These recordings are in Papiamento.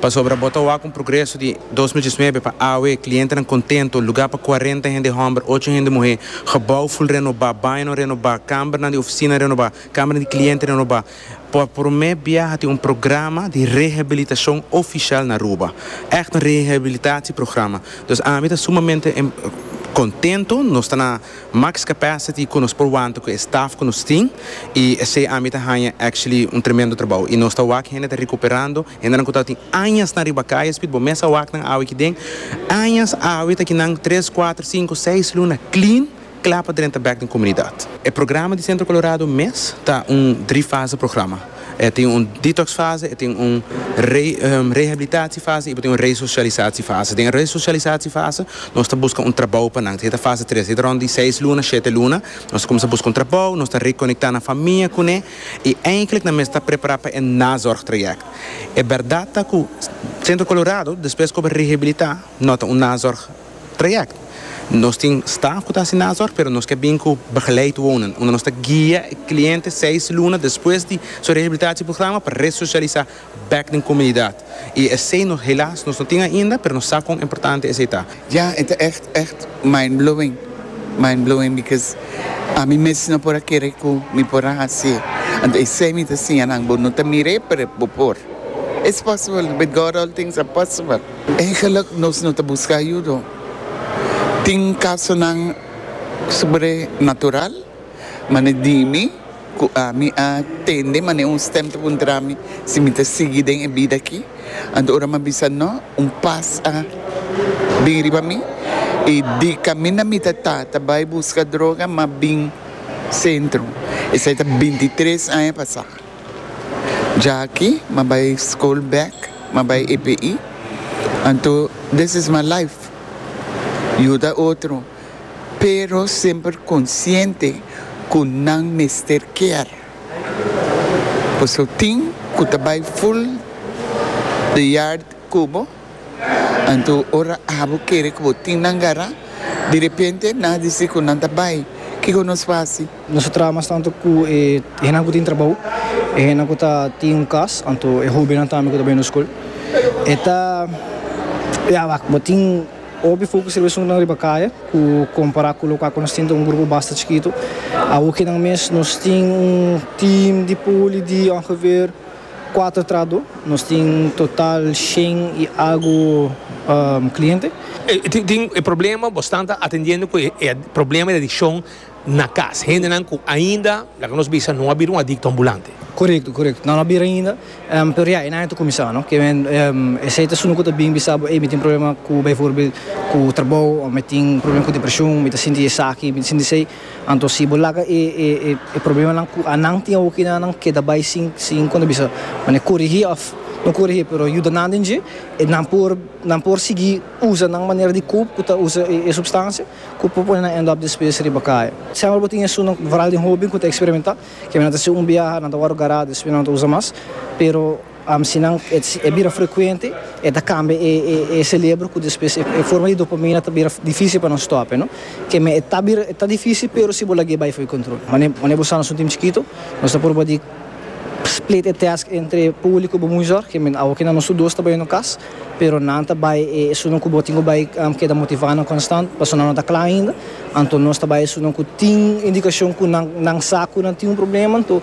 Pasobra bo ta wak un progreso di dos mil diesnove pa awe, clientenan contento, lugar pa cuarenta hende homber, ocho hende muhe, gebouw full renoba, bañonan renoba, cambernan di oficina renoba, cambernan di cliente renoba. Pa prome bia ha tin un programa di rehabilitacion oficial na Aruba. Echt un rehabilitatieprograma. Dus ami ta sumamente contento, nos ta na Max capacity cu nos por wanta cu e staff cu nos tin y esey ami ta hanja actually un tremendo trabao y nos ta wak hende ta recuperando, hendenan cu tabatin añas nan riba caya Speed bo mes a wak nan awe aki den, añas awe ta ki nan tres, cuatro, cinco, seis luna clean cla pa drenta back den comunidad. E programa di Centro Colorado mes ta un drie fase programa. E tin un detox fase, e tin un rehabilitatie fase y bo tin un resocialisatie fase. Den e resocialisatie fase nos ta busca un trabao pa nan. Esey ta fase tres. Esey ta rond di seis luna, shete luna. Nos ta cuminsa busca un trabao, nos ta reconecta nan famia cune y eindelijk nan mes ta prepara pa e nazorg trayect. E berdad ta cu Centro Colorado despues cu a rehabilita no ta un nazorg trayect. Nos tin staff cu ta haci na azor pero nos ke bin cu begeleid wonen unda nos ta guia e cliente seis luna despues di su rehabilitatie programa pa resocialisa back den comunidad y esey nos helaas nos no tin ainda pero nos sa con importante esey ta. Ya e ta echt echt mind blowing mind blowing because ami mes no por a kere cu mi por a hacie anto esey mi ta siña nan bo no ta mire pero bo por it's possible with God all things are possible. Eigenlijk nos no ta busca ayudo. Tin casonan sobrenatural, mane dimi cu ami a tende mane un stem ta puntrami si mi ta sigui den e bida aki. Anto ora mi a bisa no, un paz a bin riba mi y di camina mi ta ta ta bay busca droga mi a bin centro. Esai ta bintitres aña pasa. Jaki ma bai skol bek, ma bai EPI, anto this is my life, yuda otro, pero semper konsiente ku nan mester kier. Paso tin ku ta bai full de yard ku bo. Anto ora abo kere ku bo tin nan gará, di repente nan a disi ku nan ta bai. Kiko nos fasi? Nos a traha mas tantu ku e hennan ku tin trabou, e hennan ku ta tin un kas, anto e hóbennan tambe ku ta bai nos skol. E ta, ya wak, bo tin hopi fokus riba esuntunan riba kaya ku kompará ku loke ku nos tin ta un grupo basta chikitu. Awokenan mes nos tin un tim di poli di ongeveer Kuater trahadó. Nos tin total shen i agu kliente. Tin e problema, bo stan ta atendiendo ku e problema di adikshon na kas. Hendenan ku ainda, laga nos bisa, no a bira un adikto ambulante. Korekto, korekto. Nan no a bira ainda, pero ya e aña ta kuminsá, no? Ke men esei ta esun ku ta bin bisa bo, ey, mi tin problema ku, beivoorbeeld, ku trabou, òf mi tin problema ku depreshon, mi ta sinti esaki, mi ta sinti esei. Anto si bo laga e e problemanan ku anan tin awo kina nan keda bai sin sin kon ta bisa mane korigí òf no korigí pero yuda nan den dje e nan por nan por sigui usa nan manera di koop ku ta usa e supstansia ku por pone nan end up despues riba kaya. Semper bo tin esunnan vooral den hoben ku ta eksperimentá ke nan ta hasi un biaha nan ta wòrdu gará despues nan no ta usa mas pero Si nan e bira frekuente e ta kambia e selebro ku despues e forma di dopamina ta bira difísil pa nan stòp. Keme e ta bira e ta difísil pero si bo lag'é bai for di kontrol. Manera bo sa nos un tim chikitu nos ta pruba di split e task entre Puli ku bo muizòr, keme awo kina nos tur dos ta bai no kas pero nan ta bai esun ku bo tin ku bai keda motivá nan konstant pasobra nan no ta kla ainda anto nos ta bai esun ku tin indikashon ku nan sa ku nan tin un problema anto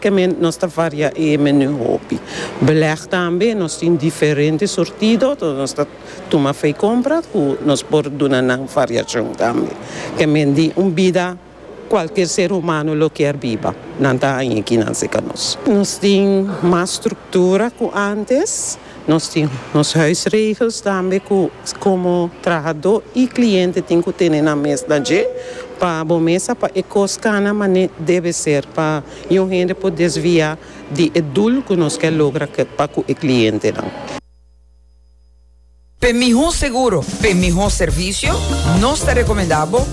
Kemment nos ta varia e menu hopi. Beleg tambe nos tin diferente surtido, so nos ta tuma fei compra cu nos por duna nan variacion tambe. Kemment di un bida cualkier ser humano lo kier biba, nan ta haña kinan si ca nos. Nos tin mas structura cu antes. Nos tin nos huisregels tambe cu como trahadó y cliente tin cu tene nan mes na dje pa bo mesa pa e cos cana mane debe ser pa yu hende por desvia di e doel cu nos kier logra pa cu e clientenan. P'e mihó seguro, p'e mihó servicio, nos ta recomenda bo.